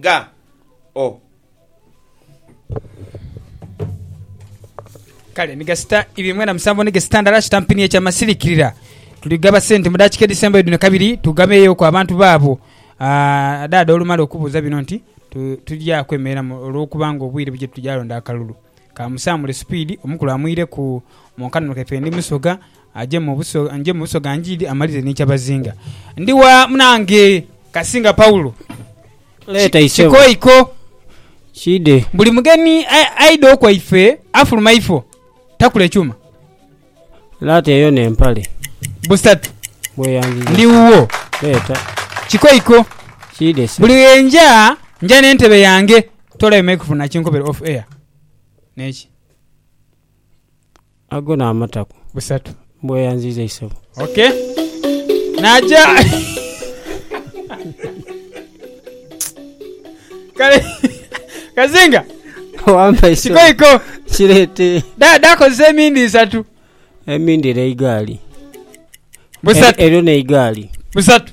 Ga o. Kale ni gasita ibiri mwenda musanvu ni gesita ndala kitampini ekya masilikirira. Tuli gaba sente mu dakika edhisembayo dhino kabiri tugabeeyo ku abantu baabo. Ah, Dhaadha olumala okubuuza bino nti, Tu, tugya kwemereramu olw'okuba nga obwire buje tugya londa akalulu. Ka musaamule supiidi, omukulu amwire ku mu nkanula efe ndi Musoga. Aje mu buso ga Ngiiri amalire n'ekyabazinga. Ndi wa munange Kasinga Paulo? Leeta isebo. Kikoiko. Kiidhe. Buli mugeni aidha okwaife afuluma ifo takula ekyuma. Laata eyo n'empale. Busatu. Bweyanziza. Ndi wuwo. Leeta. Kikoiko. Kiidhe ssebo. Buli lwe nja, nja n'entebe yange. Toolayo Mike Vunnakinkobere off air. N'eki. ago n'amatako. Busatu. Mbweyanziiza isebo. Ok. Naja. Kale Kazinga Wampa isebo. kiko iko Kireete. Da- dakozesa emindi isatu. Emindi era eigaali. Busatu. E- Eryo n'eigaali. Busatu.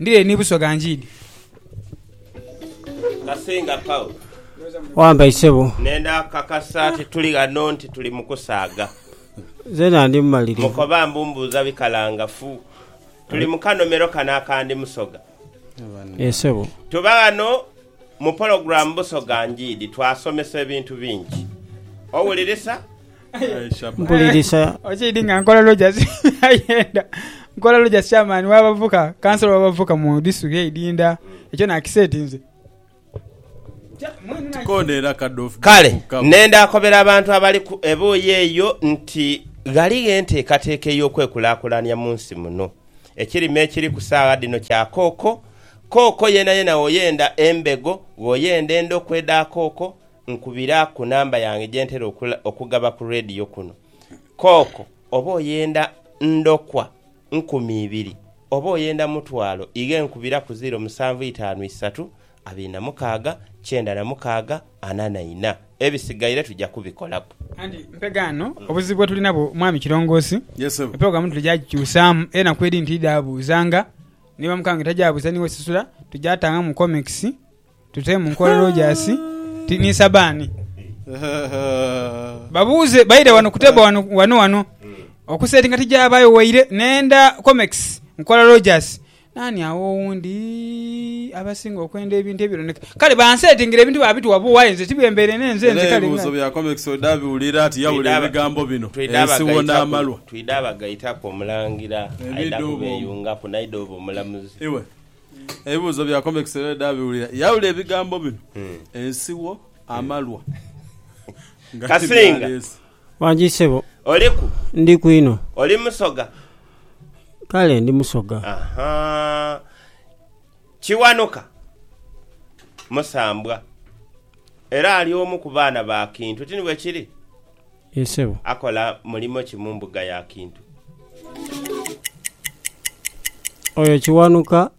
Ndire ni busoga njiidi. Kasinga Paul. Wambai sebo. Nenda kakasa nti tuli ghano nti tuli mu kusaaga. Nzena ndi mumalirivu. Mukoba mbu mbuuza bikalangafu. Tuli mu kanomero kano aka Ndi Musoga. Yee sebo. Tuba ghano mu pologulamu Busoga Njiidi twasomesa ebintu bingi. Owulirisa? Mpulirisa. Okiidhi nga nkola Rogers ayenda nkola Rogers chairman w'abavuka, kansolo w'abavuka mu disitulikiti y'e Idinda. Ekyo naakiseetinze. Kale ne ndaakobera abantu abali ku ebuuyi eyo nti ghaligho enteekateeka ey'okwekulaakulanya mu nsi muno. Ekirime ekiri ku saagha dhino kya kooko. Kooko yenayena woyenda embego, woyenda endokwa edha kooko, Nkubira ku namba yange gye ntera okugaba ku leediyo kuno. Kooko oba oyenda ndokwa nkumi ibiri oba oyenda mutwalo ighe nkubira ku ziiro musanvu itaanu isatu abiri na mukaaga kyenda na mukaaga ana na ina. Ebisigaire tuja kubikolaku. Anti mpega ghano obuzibu bwe tuli nabwo mwami Kirongoosi, epulogulaamu tuli gya gikyusaamu era enaku edhindi tidhaabuuzanga. Ni bamukaange tajaabuuza ni we sisula, tujaatangaamu komekisi Tute mu nkola Rogers ti ni Sabani. Babuuze baire wano ku table wano wano wano okusetinga tijabayo waire nenda Comex nkola Rogers nani agho owundi abasinga okwenda ebintu ebironeka kale bansetingire ebintu babituwa buwa aye nze tibyembeire nenze Era nze kale ebibuuzo nga. bya Comex oda biwulira ati yabula Twidaba- ebigambo bino twidaba ensi wona gaitaku- amalwa. Twidaba gaitaku omulangira aidha Ebidobo. kubeyungaku naidha oba omulamuzi. Iwe Ebibuuzo bya Convex Herode abiwulira, yaawula ebigambo bino, ensigho, amalwa, nga Kasinga. tibyaleese. Wangi ssebo, Oliku? ndiku inho. Oli Musoga? Kale ndi Musoga. Ahaa. Kiwanuka musambwa era ali omu ku baana ba Kintu, ti ni bwe kiri? Yee ssebo. Akola mulimo ki mu mbuga ya Kintu? Oyo Kiwanuka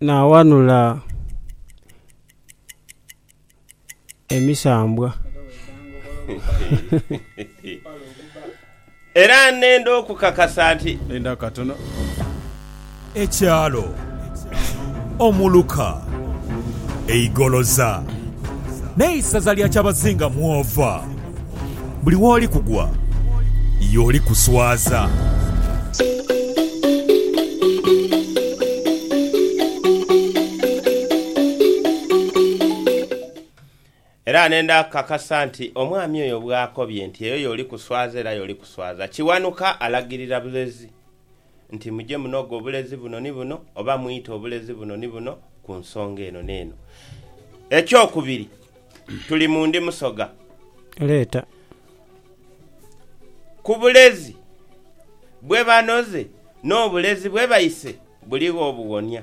n'awanula emisambwa. Era nenda okukakasa nti. Linda katono. Ekyalo, omuluka, eigoloza, n'eisaza lya kyabazinga mw'ova. Buli w'oli kugwa, y'oli kuswaza. Era nenda kukakasa nti omwami oyo bw'akobye nti eyo y'oli kuswaza era y'oli kuswaza, Kiwanuka alagirira bulezi nti muje munoge obulezi buno ni buno oba mwite obulezi buno ni buno ku nsonga eno n'eno. Ekyokubiri, tuli mu ndi Musoga. Leeta. Ku bulezi bwe banoze n'obulezi bwe baise buligho obuwonia.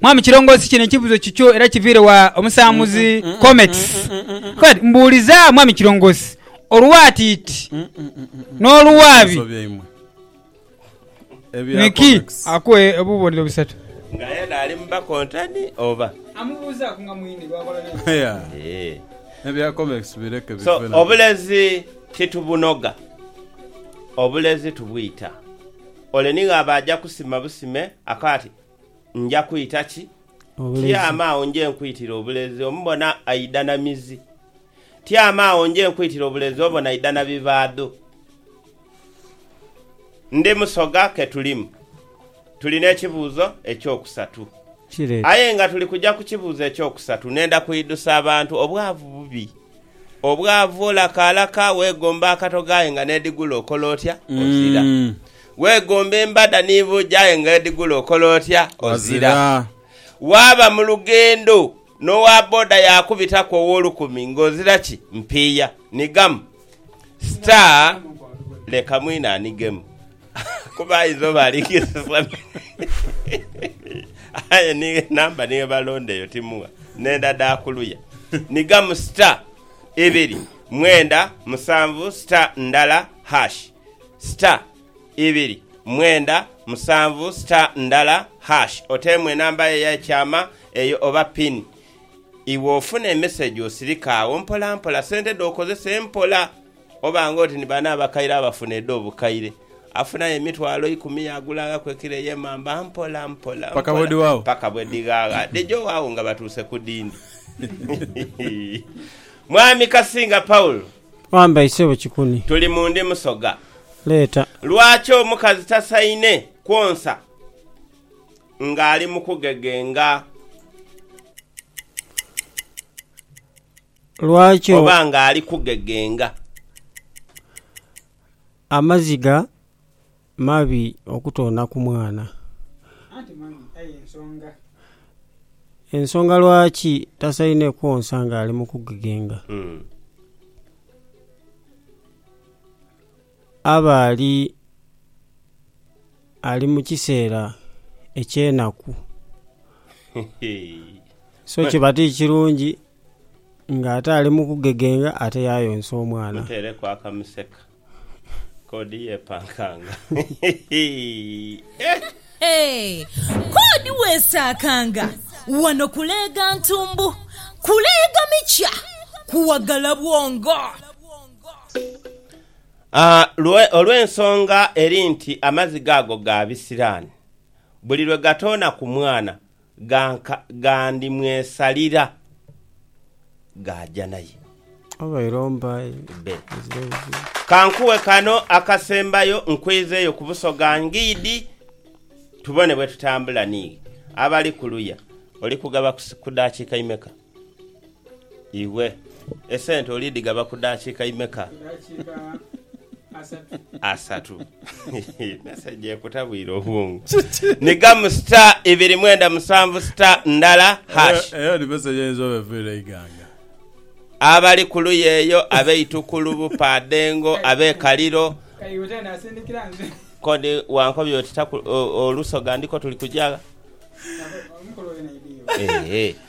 Mwami Kirongosi kino ekibuzo kikyo era kiviire wa omusambuzi Comex agamba nti Mbuuliza Mwami Kirongosi oluwaatiiti n'oluwaabi niki akuwe obubonero busatu. Nga yena ali mu bakontani oba? Amubuuzaaku nga mwine bwakola naye. So obulezi titubunoga, obulezi tubwita. Ole nighaba aja kusima busime ako ati. Nja kwita ki? Tyama agho nje nkwitire obulezi omubona aidha na mizi. Tyama agho nje nkwitire obulezi obona aidha na bivaadho. Ndi Musoga ke tulimu. Tuli n'ekibuuzo eky'okusatu. Aye nga tuli kuja ku kibuuzo eky'okusatu, nenda kwidhusa abantu obwavu bubi. Obwavu olaka alaka, weegomba akatogo aye nga n'edhigula okola otya? Ozira. Weegomba embada ni buugi aye nga edhigula okola otya? Ozira. Waaba mu lugendo n'owa boda yaakubitaku ow'olukumi ng'ozira ki? Mpiiya. Nigamu. Star leka mwine anigemu kuba ayinza oba ali kisisa aye ni namba ni bwebalonda eyo timugha nenda dha kuluya. Nigamu star ibiri mwenda musanvu star ndala hash. star ibiri mwenda musanvu star ndala hash oteemu enamba yo eya kyama eyo oba pin iwe ofuna emessage osirike agho mpola mpola sente dho okozese mpola oba nga oti ni bano abakaire abafuna edho bukaire afunayo emitwalo ikumi ya gulangaku ekilo eye mamba mpola mpola Paka mpola bwedhiwaagho. paka bwedhighagha dhijo agho nga batuuse ku dindi Mwami Kasinga Paul. Wamba isebo kikuni. Tuli mu ndi musoga. Leeta. Lwaki omukazi tasaine kwonsa nga ali mu kugegenga Lwaki. Oba nga ali kugegenga. Amaziga. Mabi okutoona ku mwana. Anti mabi aye nsonga. Ensonga lwaki tasaine kwonsa nga ali mu kugegenga. Aba ali ali mu kiseera eky'enaku so kiba ti kirungi Nga ate ali mu kugegenga ate yaayonsa omwana. Muteereku akamuseka Kodi yeepankanga eh! Kodi weesaakanga wano kuleega ntumbu, kuleega mikya, kuwagala bwongo. Lwe olw'ensonga eri nti amaziga ago ga bisiraani, buli lwe gatoona ku mwana Ghandimwesalira gaaja naye. Be. Ka nkuwe kano akasembayo nkweze yo ku Busoga Ngidi tubone bwe tutambula ni abali ku luya. Oli kugaba ku dakiika imeka? Iwe esente olidhigaba ku dakika imeka? Asatu. Message ekutabwire obwongo. Ni gamu star ibiri mwenda musanvu star ndala hash. Eyo, eyo ni message eyinza oba eviira eiganga. Abali ku luya eyo ab'e Itukulu, Bupaadhengo, ab'e Kaliro, ko ni wankobya oti taku, o, Olusoga ndiko tuli kugya gha? Eehee.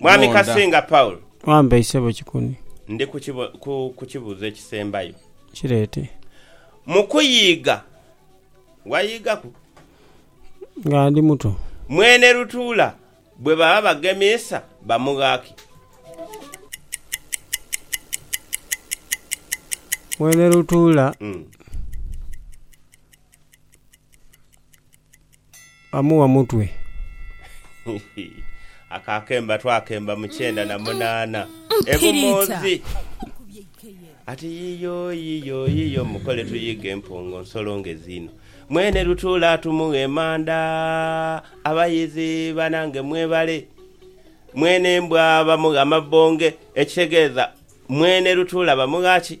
Mwami Munda. Kasinga Paul. Wambeyi sebo Kikuni. Ndi ku kibo, ku, ku kibuuzo ekisembayo. Kireete. Mu kuyiiga, wayiigaku? Nga ndi muto. Mwene Lutuula bwe baba bagemiisa bamugha ki? Mwene Lutuula Mm. amugha mutwe. Ako akemba twakemba mu kyenda na munaana e Bumoodhi. Ati yiyo yiyo yiyo mukole tuyighe empongo nsolo ngezi inho. Mwene lutuula tumughe emanda. Abayizi banange mwebale. Mwene embwa bamugha mabonge ekitegeeza mwene lutuula bamugha ki?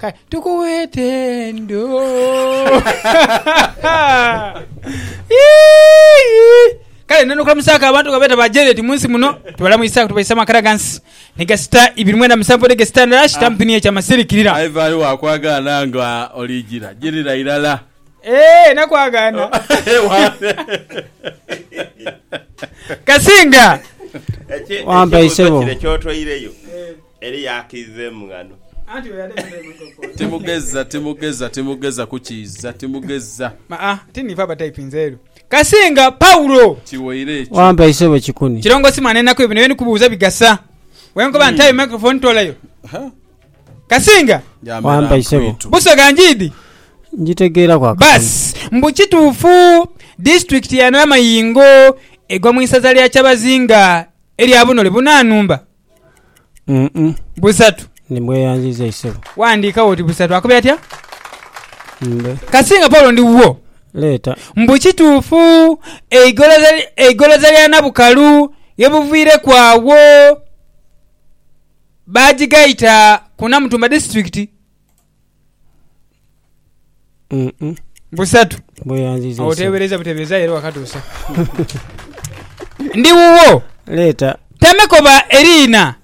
Kale tukugheete ndo. Kale ndenda okulamusaaku abantu nga beeta ba Janet mu nsi muno. Tubalamuisaaku tubaisa mu maka da ghansi ni gasita ibiri mwenda musanvu ni gasita ndala shitampu ni ekya masirikirira. Aye vayo wakwagaana nga olijira jirira irala. Eeh nakwagaana. Kasinga. Wampai sebo. Eli yaakidha emung'ano. Timugeza, timugeza, timugeza kukiiza, timugeza. Ma a, ti niife abataipinze elu. Kasinga Paulo. Kiwaire ekyo. Wampa isebo kikuni. Kirongosi mwana enaku bino by'endi kubuuza bigasa. Bwenkoba nti aye microphone toolayo. Kasinga. Wampa isebo. Busoga njiidi? Njitegeeraku akatono. Baasi. Mbu kituufu disitulikiti ya Namayingo egwa mu isaza lya Kyabazinga erya bunole bunanumba? Busatu. Ndi mweyanziza isebo. Wandiika woti busatu akubye atya? Mbe. Kasinga Paulo ndi wuwo. Leeta. Mbu kituufu eigoloza eigoloza lya Nabukalu ye buviireku agho baagigaita ku Namutumba disiturikiti Mm-mm. Busatu. Bweyanziza Awo ensi. oteebereza buteebereza aye era wakatuusa. Ndi wuwo. Leeta. Tame koba eriina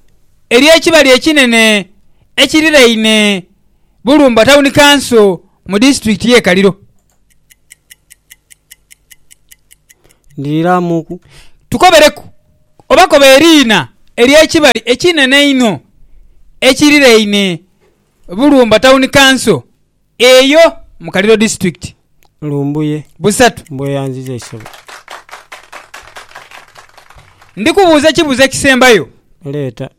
ery'ekibali ekinene ekiriraine Bulumba Town Council mu disitulikiti y'e Kaliro. Ndiriiramuuku. Tukobereku oba koba eriina ery'ekibali ekinene einho ekiriraine Bulumba Town Council eyo mu Kaliro District. Lumbuye. Busatu. Mbweyanziza eisebo. Ndi kubuuza ekibuuzo ekisembayo. Leeta.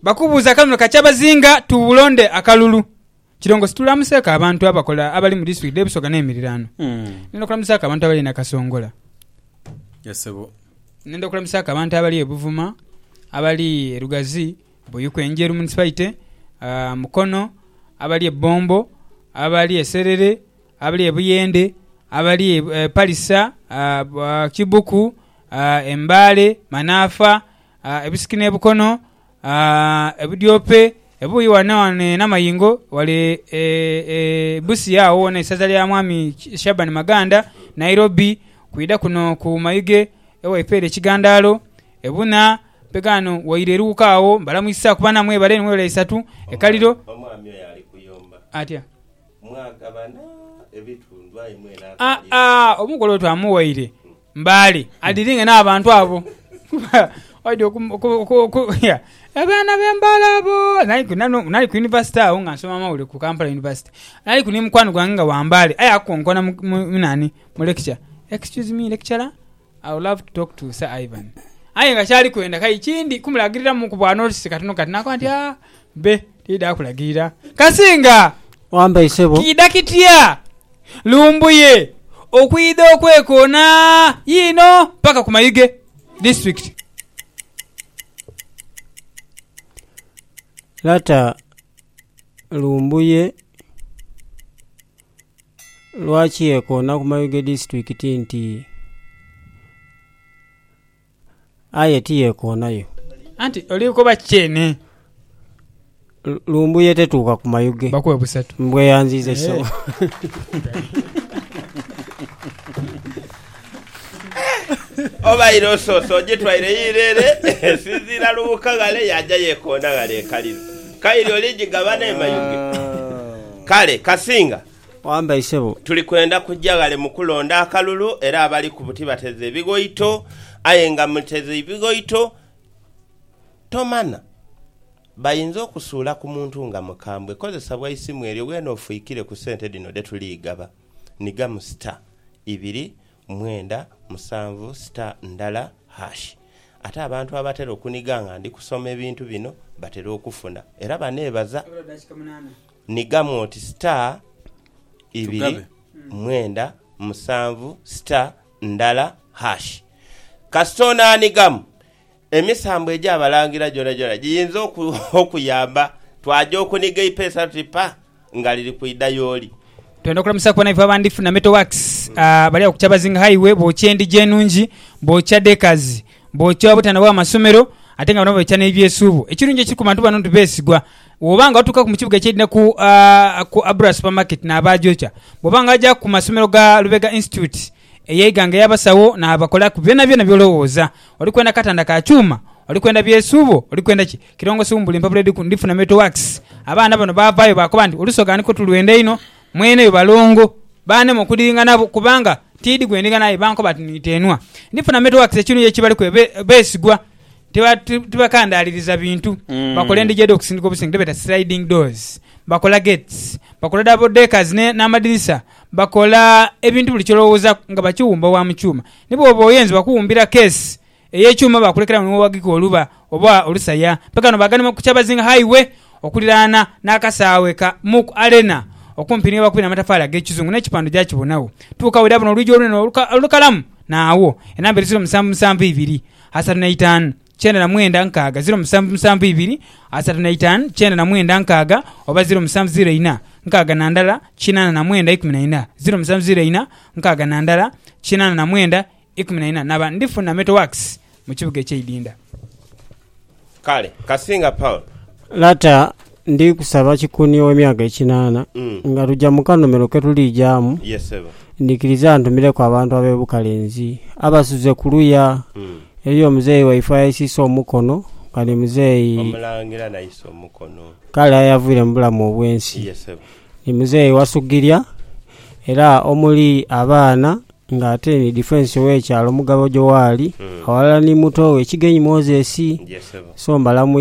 Bakubuuza kano ka kyabazinga tubulonde akalulu. Kirongo situlamuseeko abantu abakola abali mu district dhe Busoga n'emiriraano. Nenda okulamusaako abantu abali e Nakasongola. Yes sebo. Nenda okulamusaako abantu abali e Buvuma, abali e Lugazi, Buyuku Enjeru Munisipaite, Mukono, abali e Bombo, abali e Serere, abali e Buyende, abali e Palisa, Kibuku, e Mbale, Manaafa, e Busiki n'e Bukono, e Budyope, ebuuyi ghano ghano e Namayingo, ghale e Busia agho ghona isaza lya Mwami Shaban Maganda, Nairobi, kwidha kuno ku Mayuge ewaife ere e Kigandaalo, e Buna. Mpe ghano waire Luuka agho. Mbalamuisaaku bana mwebale ni mwebale isatu ekaliro. Omwami oyo ali kuyomba. Atya? Mwagabana ebitundu aye mwena akaali. Aa a omugole oyo twamughaire mbale adiringe n'abantu abo kuba waidha oku. Abaana be mbale abo. Nali ku yunivasite agho nga nsoma amawulire ku Kampala Yunivasite. Naliku ni mukwano gwange nga wa mbale aye akonkona mu nani, mu lecture. Excuse me lecturer? I would love to talk to Sir Ivan aye nga kyali kwenda kale kindi kumulagiriramu ku bwa notice katono kati nakoba nti aah bbe tididha kulagirira Kasinga Wambaire sebo. Kiidha kitya Lumbuye okwidha okwekoona yiino paka ku Mayuge district? Lata Lumbuye. Lwaki yekoona ku Mayuge Disitulikiti nti aye tiyekoonayo? Anti oli kukoba ki kyene? Lumbuye tetuuka ku Mayuge. Bakuwe busatu. Mbweyanziiza kisawo. Obaire osoose ogitwaire yiire ere, esinziira lughuka ghale yaaja yeekoona ghale e Kaliro. Kaire oligigabana e Mayuge. Kale, Kasinga. Wambai ssebo. Tuli kwenda kuja ghale mu kulonda akalulu era abali ku buti bateze ebighoito. Aye nga muteze ebighoito, tomanha bayinza okusuula ku muntu nga mukambwe. Kozesa bwa isimu eryo weene ofwikire ku sente dhino dhe tuliigaba. ni gamu sita ibiri mwenda musanvu sita ndala hash. Ate abantu abatera okuniga nga ndi kusoma ebintu bino batera okufuna era baneebaza ni gamu oti sita ibiri mwenda musanvu sita ndala hash. Kasita onaanigamu Emisambo egy'Abalangira gyonagyona giyinza okuyamba twaja okuniga eipeesa tuti pa nga liri kwidha y'oli. Twenda okulamusa ku banaife abandhifu na Metal Works bali agho ku Kyabazinga Highway bookya endhigi enungi, bookya deckers, bookya obutanda bw'amasomero ate nga bano bookya n'ebyesuubo. Ekirungi ekiri ku bantu bano nti beesigwa. Bw'oba nga otuukaku mu kibuga eky'Eidha ku Abura Supermarket n'abaagyokya. Bw'oba nga wajaaku ku masomero ga Lubega Institute Eyaighanga yabasagho naabakolaku byonabyona by'olowooza. Oli kwenda katanda ka kyuma? Oli kwenda byesuubo? Oli kwenda ki? Kirongosi wumbula empapula edhiri ku Ndifuna Metal Works. Abaana bano baavaayo baakoba nti, Olusoga nikwo tulwenda inho. Mweneyo balongo. Baanema okudiringa nabo kubanga tiidhi gwe ndiringa naye. Bankoba ati, Niteenhwa Ndifuna Metal Works ekinuuya ekibaliku ebe beesigwa. Tiba, tibakandaaliriza bintu. Bakola endhigi edh'okusindika obusenge dhebeeta sliding doors. Bakola gates. Bakola double deckers ne, n'amadirisa. Bakola ebintu buli ky'olowoozaku nga bakiwumba wa mu kyuma. Ni bw'oba oyenze bakuwumbira keesi ey'ekyuma baakulekerawo ni wewagika oluba oba olusaya. Mpekano baaganhima ku Kyabazing Highway okuliraana n'akasaawe ka Mook Arena okumpi ni ghebakubira amatafaali ag'ekizungu n'ekipando gyakibonagho. Tuuka w'eraabona olwigi olunene olukalamu n'agho enamba edhizira omusanvu musanvu ibiri, asatu n'eitaanu. kyenda na mwenda nkaaga ziro musanvu musanvu ibiri asatu na itaanu kyenda na mwenda nkaaga oba ziro musanvu ziro ina nkaaga na ndala kinaana na mwenda ikumi na ina ziro musanvu ziro ina nkaaga na ndala kinaana na mwenda ikumi na ina naba ndifuna Metal Works mu kibuga ekyeidinda. Kale, kasinga Paul. Lata Ndi kusaba kikuni ow'emyaka ekinaana, nga luja mu kanhumiro ke tuliijaamu, ndhikiriza antumireku abantu ab'e Bukalenzi abasuze ku luya. Eriyo omuzeeyi waife ayaisiisa omukono, nga ni muzeeyi. Kale aye avwire mu bulamu obw'ensi. Ni muzeeyi Wasugirya, era omuli abaana, nga ate ni difensi ow'ekyalo Mugabo Joali, aghalala ni muto we Kigenyi Moses. So mbalamuiza.